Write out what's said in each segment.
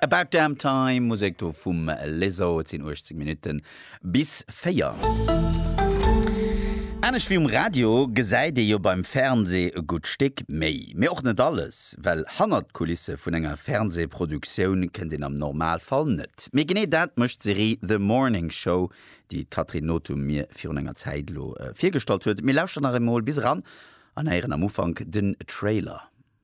About Damn Time, Musek do vum Lizzo. Et sinn 18 Minutte bis 4. Anescht wéi um Radio gesäit ee jo beim Fernsee e gutt Stéck méi. Mee och net alles, well hannert d'Kulisse vun enger Fernsee-Produktioun kënnt een am Normalfall net. Mee genee dat mécht d'Serie The Morning Show, déi d'Catherine Nothum mir virun enger Zäit elo virgestallt huet. Mir lauschteren nach eemol bis eran an héieren am Ufank den Trailer.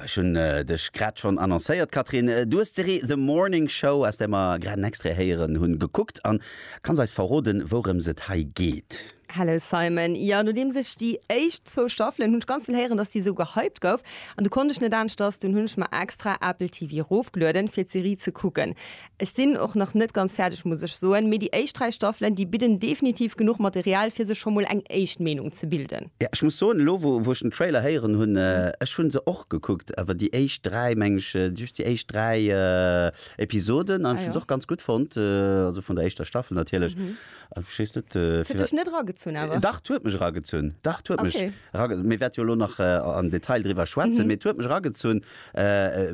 Ech hunn dech grad schonn annoncéiert, Catherine, du hues d'Serie The Morning Show, aus där mer grad en Extrait héieren hunn, gekuckt an kanns eis verroden, wourëms et hei geet? Hello Simon, jo, nodeems ech déi éischt zwou Staffelen, hunn ech ganz vill héieren, dass déi esou gehypt gouf, an du konnt ech net aneschters, dunn hunn ech mer extra Apple TV rofgelueden, fir d'Serie ze kucken. Ech sinn och nach net ganz fäerdeg muss ech soen, mee déi éischt 3 Staffelen, déi bidden definitiv genuch Material fir sech scho mol eng éischt Meenung ze bilden. Jo, ech muss soen, elo wou ech den Trailer héieren hunn, ech hunn se och gekuckt, awer déi éischt 3, mengen ech, just déi éischt 3 Episoden, an ech hunn se och ganz gutt fonnt, also vun der éischter Staffel natierlech, an ech weess net, firwat. Huet dech net eragezunn awer? Dach, 't huet mech eragezunn, dach, 't huet mech eragezunn, mee wäert jo elo nach am Detail driwwer schwätzen, mee 't huet mech eragezunn.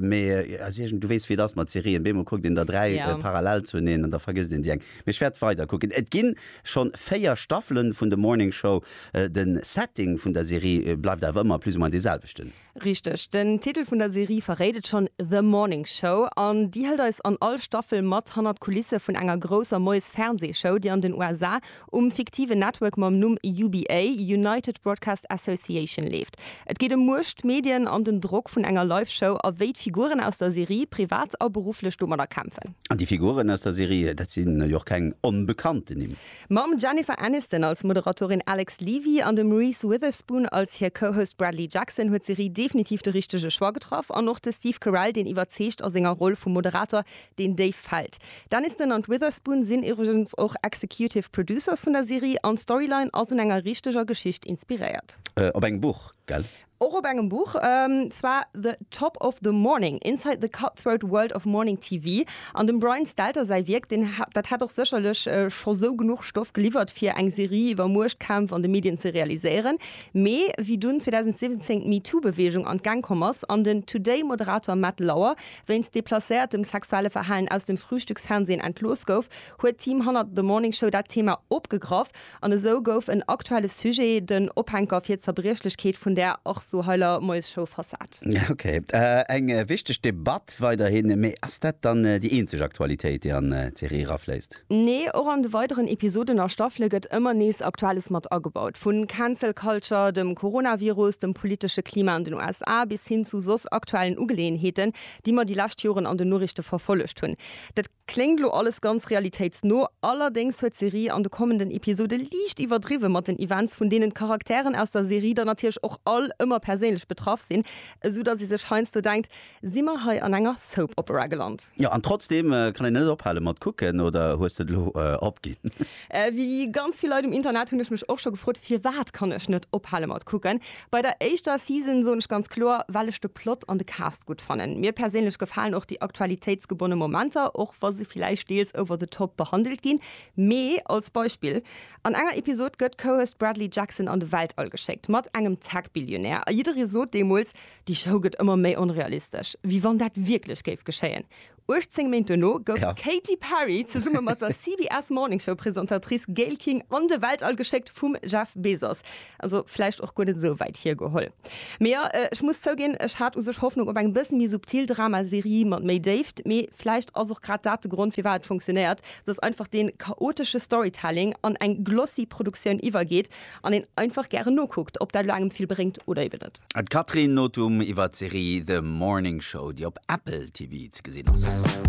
Mee also iergend, du weess wéi et ass mat Serien, beemol kuckt een der dräi Yeah. parallel zueneen an da vergësst een déi eng. Mee ech wäert weider kucken. Et ginn schonn 4 Staffelen vun The Morning Show. Den Setting vun der Serie bleift awer ëmmer plus ou moins dee selwechten. Richteg. Den Titel vun der Serie verréit et schonn, The Morning Show. An déi hëlt eis an all Staffel mat hannert d'Kulisse vun enger grousser Moies-Fernseeshow, déi an den USA um fiktiven Network mam Numm UBA, United Broadcast Association, leeft. Et geet ëm Muecht, Medien an den Drock vun enger Live-Show a wéi d'Figuren aus der Serie privat a berufflech domadder kämpfen. An déi Figuren aus der Serie, dat si jo och keng onbekannten Nimm. Mam Jennifer Aniston als Moderatorin Alex Levy an dem Reese Witherspoon als hir Co-Host Bradley Jackson huet d'Serie definitiv de richtege Choix getraff. An och de Steve Carell, deen iwwerzeegt a senger Roll vum Moderator, Deen Dave fällt. D'Aniston an d'Witherspoon sinn iwwregens och Executive Producers vun der Serie an d'Storyline ass un enger richteger Geschicht inspiréiert. Op engem Buch, gell? Och op engem Buch, zwar The Top of the Morning, Inside the Cutthroat World of Morning TV an dem Brian Stelter säi Wierk. Deen, dat hätt och sécherlech scho sou genuch Stoff geliwwert fir eng Serie iwwer Muechtkämpf an de Medien ze realiséieren, mee wéi dunn 2017 d'MeToo-Beweegung an d'Gäng komm ass an den Today-Moderator Matt Lauer Wéinst deplacéiertem sexuelle Verhalen aus dem Frühstücksfernsehen entlooss gouf, huet d'Team hannert The Morning Show dat Thema opgegraff an esou gouf en aktuelle Sujet den Ophänker fir d'Zerbriechlechkeet vun där och sou heiler Moiesshow versat. Ok, eng wichteg Debatt weiderhin, mee ass dat dann déi eenzeg Aktualitéit, déi an d'Serie erafléisst? Nee, och an de weideren Episoden a Staffele gëtt ëmmer nees Aktuelles mat agebaut. Vu Cancel Culture, dem Coronavirus, dem politesche Klima an den USA bis hin zu soss aktuellen Ugeleeënheeten, déi mer déi lescht Joren an den Noriichte verfollegt hunn. Dat kléngt lo alles ganz realitéitsno, allerdéngs huet d'Serie an de kommenden Episode liicht iwwerdriwwe mat den Events, vun deenen d'Charakteren aus der Serie dann natierlech och all ëmmer perséinlech betraff sinn, esou dass ee sech heiansdo denkt, Si mer hei an enger Soap Opera geland? Jo, an trotzdeem kann een net ophale mat kucken, oder hues de et elo opginn? Wéi ganz vill Leit um Internet hunn ech mech och scho gefrot, firwat kann ech net ophale mat kucken. Bei der éischter Season soen ech ganz kloer, well ech de Plot an de Cast gutt fannen. Mir perséinlech gefalen och déi aktualitéitsgebonne Momenter, och wa se villäicht deels over the top behandelt ginn. Mee als Beispill, an enger Episod gëtt Cohost Bradley Jackson an de Weltall geschéckt, mat engem Tech-Billionär, a jidderee sot deemools, Déi Show gëtt ëmmer méi onrealistesch, wéi wann dat wierklech géif geschéien. 18 Méint duerno gouf d'Katy Perry zesumme mat der CBS Morning Show Presentatrice Gayle King an de Weltall geschéckt vum Jeff Bezos. Also vläicht och guer net esou wäit hiergeholl. Mee jo, ech muss zouginn, ech hat u sech Hoffnung op eng bëssen méi subtil Drama-Serie mat méi Déift. Mee vläicht ass och grad dat de Grond firwat et funktionéiert, dass einfach dee chaotesche Storytelling an eng glossy Produktioun iwwergeet An een einfach gären nokuckt, ob dat elo engem vill bréngt oder eben net. D'Catherine Nothum iwwer d'Serie The Morning Show, déi op Apple TV ze gesinn ass.